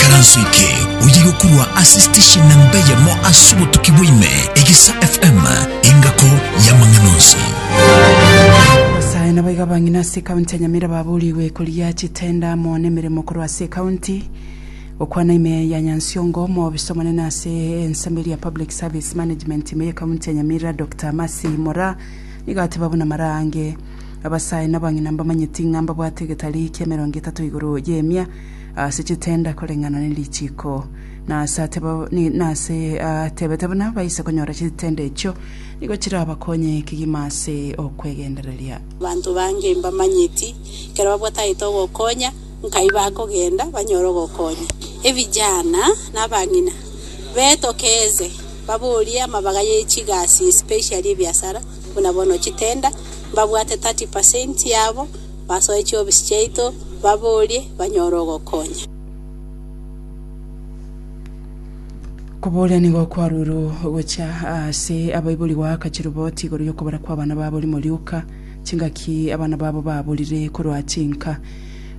Ekaranso eke oye yokorwa ase station namba eyemo ase obotuki bwaime, Egesa FM, engako y'amang'ana onsi. Abasae nabo iga abang'ina ase ekaunti ya Nyamira baburigwe korigia chitenda amo nemeremo korwa ase ekaunti. Gokwana ime ya Nyansiongo, omobiisa omonene ase ensemo eria ya Public Service Management ime y'ekaunti ya Nyamira Doctor Mercy Mora nigo ateba buna maraange abasae na abang'ina mbamanyeti ng'a mbabwate egetari kia emerongo etato igoro y'emia Ase chitenda koreng'ana ne richiiko. Na ase ateba, ni- na ase atebete buna baise konyora chitenda echio, nigo chirabakonye kegima ase okwegendereria. Abanto bange mbamanyeti, ekero babwatagete ogokonya, nkai bakogenda banyore ogokonya. Ebijana na abang'ina betokeeze, baborie amabaga ye chigasi, especially ebiasara, Buna bono chitenda, mbabwate thirty per cent yabo, basoe chiofisi chiaito, baborie, banyore ogokonya. Kobooria nigo kwaruirwe gochia ase abaibori goakachia riboti igoro y'okobora kw'abana babo rimo rioka, chingaki abana babo baborire korwa chinka.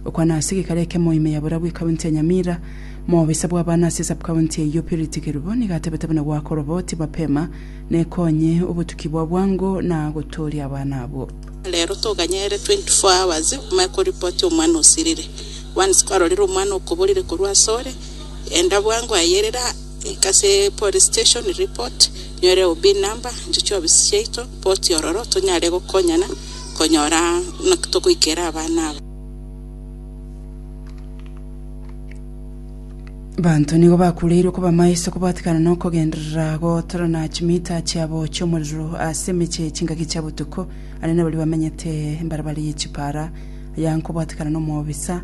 Okwana ase gekare ekemo ime ya borabu ekaunti ya Nyamira, moobisa bw'abana ase subcounty eyio Purity Kerubo nigo atebete buna gwakorwa boti mapema Nekonye obotuki bwa bwango na gotooria abana abo. Rero toganyerere 24 hours omanye ko report omwana osirire. Once kwarorire omwana okoborire korwa asore, enda bwango aye erera ika ase police station report, nyore OB number, inche chiofisi chiaito, poti ororo tonyare gokonyana konyora naki togoikera abana aba. Abanto nigo bakureirwe kobamaiso kobwatikana nokogenderera gotorana chimita chiabo chi'omorero ase emeche chingaki chia botuko, aria nabaria bamenyete mbarabara ye chipara, aya nkobwatikana nomobisa,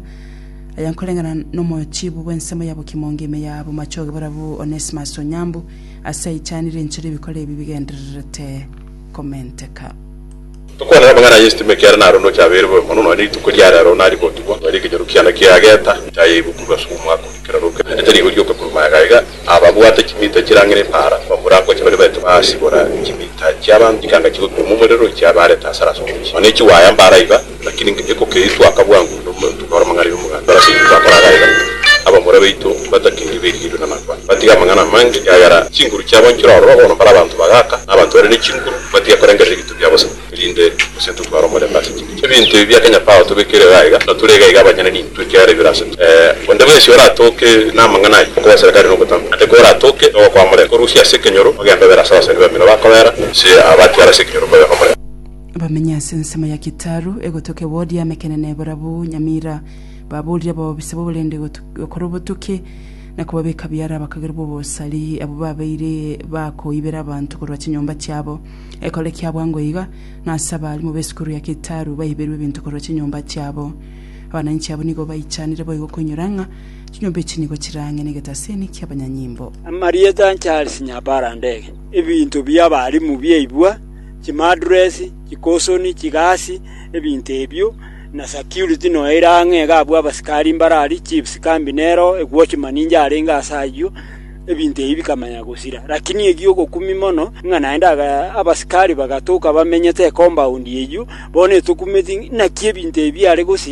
aya nkoreng'ana nomochibu bw'ensemo ya bokimonge ime ya bomachoge borabu Onesimus Onyambu, ase aichanire enchera ebikore ebi bigendererete. komenteka. Tokwanera amang'ana y'esitimo ekiagera narondoche abeire bobe mono, nonya rituko ria rero narigotugwa, nonya ekenyoro kiane kiageta nchaye igokurwa ase omwaka oria kera rokera, naende tari igoyioka korwa maega aiga. Ababwate chimita chirang'ina epaara bamorangoche bare baete basibora chimita chi'abanto chikanga chigoturwa momorero, chiabaarete asare ase omochie, nonya chiwaaya mbaara iga. Lakini ekokeitwa aka bwango nomonto ore amang'ana y'omoganda ore ase Kristo akore agaye gake. Abamura baito mbatakigwe berigererio namangwana, batige amang'ana amange, ekiagera chinguru chiabo nchire ororo bono mbare abanto bagaaka, na abanto bare ne chinguru, batige korengerera ebinto bia bosa, erinde gose ntotware omorembe ase chinguru chiabo. Ebinto ebi bia kenya Paulo tobekere iga aiga, na tore iga aiga abanyene nintwe, ekiagera ebi bire ase intwe. Ee, onde bwensi oratoke namang'ana ayio, okoboseria kare nogotamwa, naende koratoke nogokwaa omorembe, korusia ase ekenyoro, ogembe obere ase abasani bamino bakobera, gose abatiara ase ekenyoro mbabe omorembe. Bamenye ase ensemo ya Kitaru, egotoka ewodi y'amekenene barabwo nyamira, baborire abaobiso b'oborende gokora obotuki, na kobabeka biara abakagerwa b'obosari, abwo babeire bakoibera abanto korwa chinyomba chiabo. Ekore kia bwango iga, ng'a ase abarimu b'esukuru ya Kitaru baiberwe ebinto korwa chinyomba chiabo. Abananchi abwo nigo baichanire boigo koinyora ng'a chinyomba echi nigo chirang'e negetaseni ki'abanyanyimbo. Amarieta Charles Nyabarandege, Ebinto bi'abarimu biaibwa chimaduresi, chikosoni, chigasi, ebinto ebio, na security noyo ere ang'e iga abwo abasikari mbaro aria, chiefs kambi nero, watchman inche arenge ase ayio, ebinto ebi bikamanya gosira. Lakini egia ogokumia mono, ng'a naende aga abasikari bagatoka bamenyete ecompaund eyio, bono etokumeti naki ebinto ebi biare gosira.